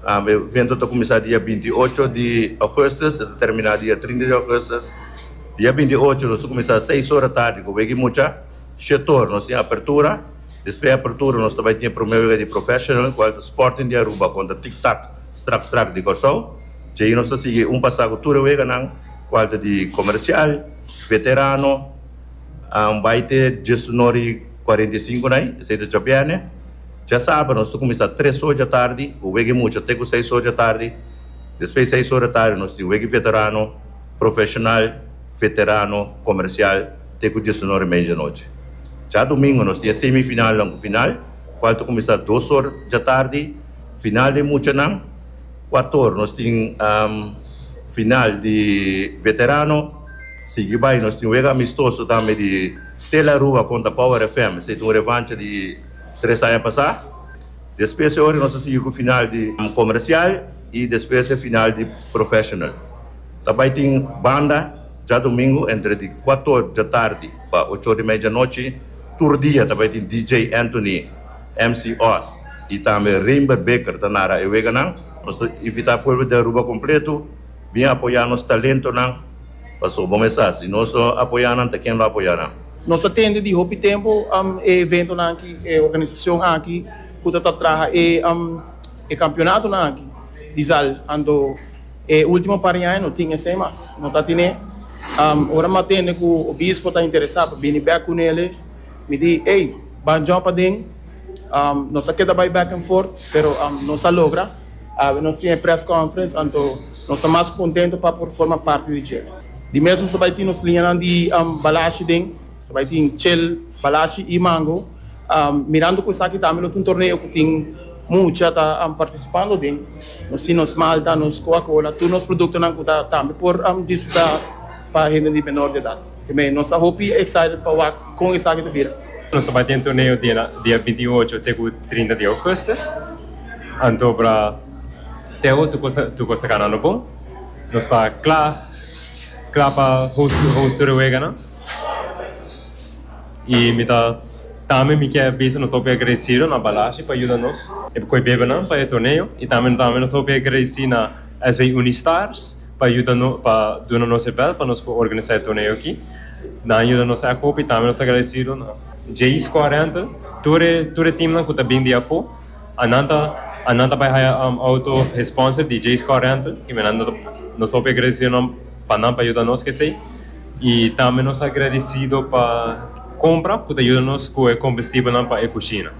E evento ta kuminsá dia binti i ocho di ougùstùs, e ta terminá dia trinta di ougùstùs. Dia binti i ocho nos ta kuminsá seis ora tardi ku wega i mucha shetor. Nos tin apertura, despues di apertura nos ta bai tin e promé wega di Professional ku el ta Sporting di Aruba kontra Tik Tak Strak Strak di Kòrsou. Dja'i nos ta sigui un pasá ku tur e weganan ku el ta di Komersial, Veterano, bai te diesunor i kuarenta i sinku na ai, esei ta djòbiène. Djasabra nos ta kuminsá tres oradja tardi ku wega i mucha te ku seis oradja tardi. Despues di seis ora tardi nos tin wega i veterano, profeshonal, veterano, komersial te ku diesunor i media di nochi. Dja dumingu nos tin e semifinalnan ku final kual ta kuminsá dos or dja tardi. Final di muchanan kuat or nos tin final di veterano. Sigui bai nos tin wega amistoso tambe di Telarua kontra Power FM. Esei ta un revancha di. tres aña pasá. Despues e ora nos a sigui ku final di komersial i despues e final di profeshonal. Ta bai tin banda djadumingu entre di kuato dja tardi pa ocho or di medianochi. Tur dia ta bai tin DJ Anthony, MC Oz i tambe Reinber Beker ta nara e weganan. Nos ta invitá pueblo di Aruba kompletu. Bin apoyá nos talentonan, Pastor Bon Esas i nos lo apoyá nan ta ken lo apoyá nan. Nos ta tende di hopi tempu e eventonan aki, e organisacion aki cu ta ta traha e campeonatonan aki. Di zal anto e ultimo par di aña no tin esey mas, no ta tine. Ora mi a tende cu Obispo ta interesa pa bini bek cu nele, mi di, ey, ban djon paden, nos a keda bay back and forth, pero nos a logra. Awe nos tin e press conference anto nos ta mas contento pa por forma parti di dje. Di mes nos ta bay tin nos liñanan di balashi den, nos ta bay tin chel, balashi y mango. Mirando cu esaki tambe lo ta un torneo cu tin mucha ta participando den. Nos tin nos malta, nos coca cola, tur nos productonan cu ta tambe por disfruta pa hende di menor di edad. Amén. Nos ta hopi excited pa wak kon esaki ta bira. Nos ta bai den torneo dia binti i ocho te ku trinta di ougustus. Anto bra Teo tur kos ta ganando bon. Nos ta kla kla pa host tur e weganan. I mi ta tambe mi kier bisa nos ta hopi agradecido na Balashi pa yuda nos koe bebenan pa e torneo. I tambe nos ta hopi agradeci na SW Unistars. pa yuda no pa duna nos e bel pa nos por organisa e torneo aki nan a yuda nos aki hopi tambe nos ta agradecido na Jay Squad Rental tur e tur e team nan cu ta bini di afo a nan ta a nan ta bay haya auto e sponsor di Jay Squad Rental y me nan nos ta nos ta hopi agradecido nan pa nan pa yuda nos cu esey y tambe nos ta agradecido pa compra cu ta yuda nos cu e combustible nan pa e cushina.